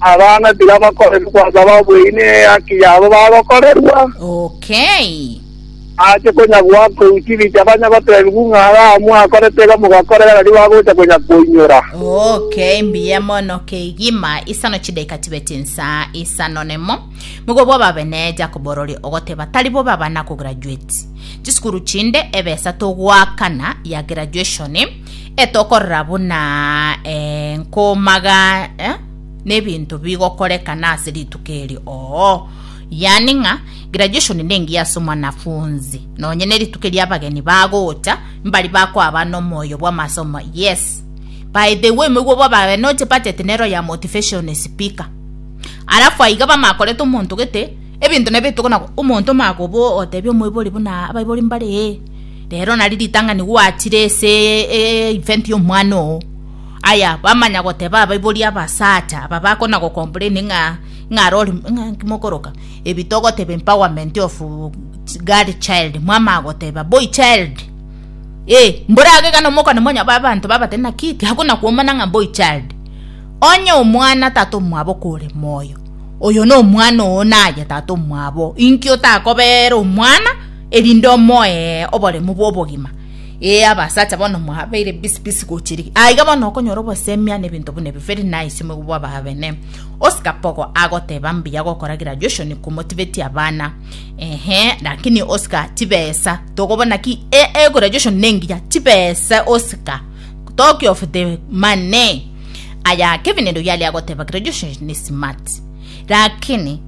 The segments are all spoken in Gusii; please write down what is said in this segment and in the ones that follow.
Abana tibabakoreri gwasaba obweini ee haki yabo bagokorerwa. Okay. Ache konya gwakou chibicha banya gotebigwa ng'a ara amwe akorete iga mogakorera rari bagocha konya koinyora. Okay, mbuya mono kegima isano chidaika tibeti nsa isano nemo migobwa obabe ne Jacob orori ogoteba tari bo baba na kograduate chisukuru chinde ebesa togwakana ya graduation Etokorera buna eh, nkomaga eh, n'ebinto bigokorekana ase rituko eri oo yani ng'a graduation nengiya ase omwanafunzi nonye nerituko eria abageni bagocha mbari bakoaba nomoyo bw'amasomo yes by the way moigwe bwa babe noche budget nero ya motivation speaker alafu aiga bamakorete omonto gete ebinto nabito kona omonto makobo otebi omoibori buna abaibori mbare ee Rero nari ritang'ani gwachire ase event y'omwana oo. Aya, bamanya goteba abaibori abasacha aba bakona go complain ng'a ng'a rori ng'a inki mokoroka ebi togoteba empowerment of girl child mwamanya goteba boy child eh mborage ekero mokona mwanya ba abanto babate naki tiakona kwomana ng'a boy child. Onye omwana tata omwabo kore moyo, oyo nomwana oo naye tata omwabo inki otakobera omwana. erinde omoe oboremu bw'obogima. Ee, abasacha bono mwabeire bisi bisi gochia rigiya. Aiga bono okonyora obosemia na ebinto buna ebio very nice moigwa bwa ababene. Oscar Pogo agoteba mbuya gokoragira Joshon komotibetia abana. Ehe, lakini Oscar chibesa tokobona ki e egora Joshon nengiya chibesa Oscar talk of the money. Aya Kevin ndoyali agoteba kira Joshon ni smart. Lakini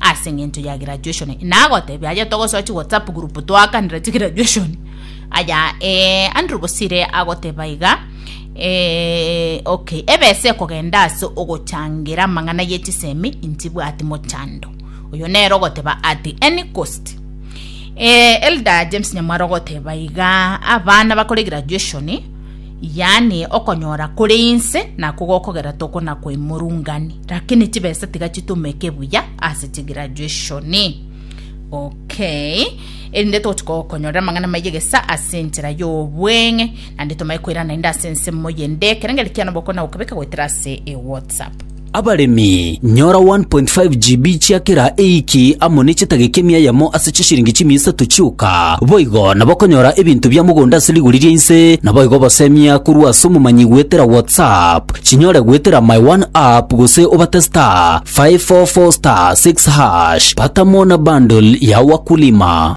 Ase engencho ya graduation nagotebia aye togosoa chi WhatsApp group twakanera chi graduation aya eh, Andrew Bosire agoteba iga eh, okay ebesa ekogenda ase ogochangira amang'ana ye chisemi intibwati mochando oyo nero ogoteba at any cost eh, Elder James Nyamwaro ogoteba iga abana bakore graduation yaani okonyora kore inse nakwo gokogera toko na koimorungani, lakini chibesa tiga chitumeke buya ase chigraduationi. Okay, erinde togochia gokonyorera amang'ana maye gesa ase enchera y'obweng'e, naende tomaye koirana naende ase ensemo y'endekera, ng'erekiano bokong'ina gokebeka goetera ase ewhatsapp. Abaremi, nyora 1.5 GB chia kera eiki amo ne chetageki emia yamo ase chishiringi chimia isato chioka. Boigo nabokonyora ebinto bia mogondo ase rigori ria inse, naboigo obosemia korwa ase omomanyi goetera WhatsApp, chinyore goetera my one app gose obate star 544 star 6 hash. Pata mo na bundle ya wakulima.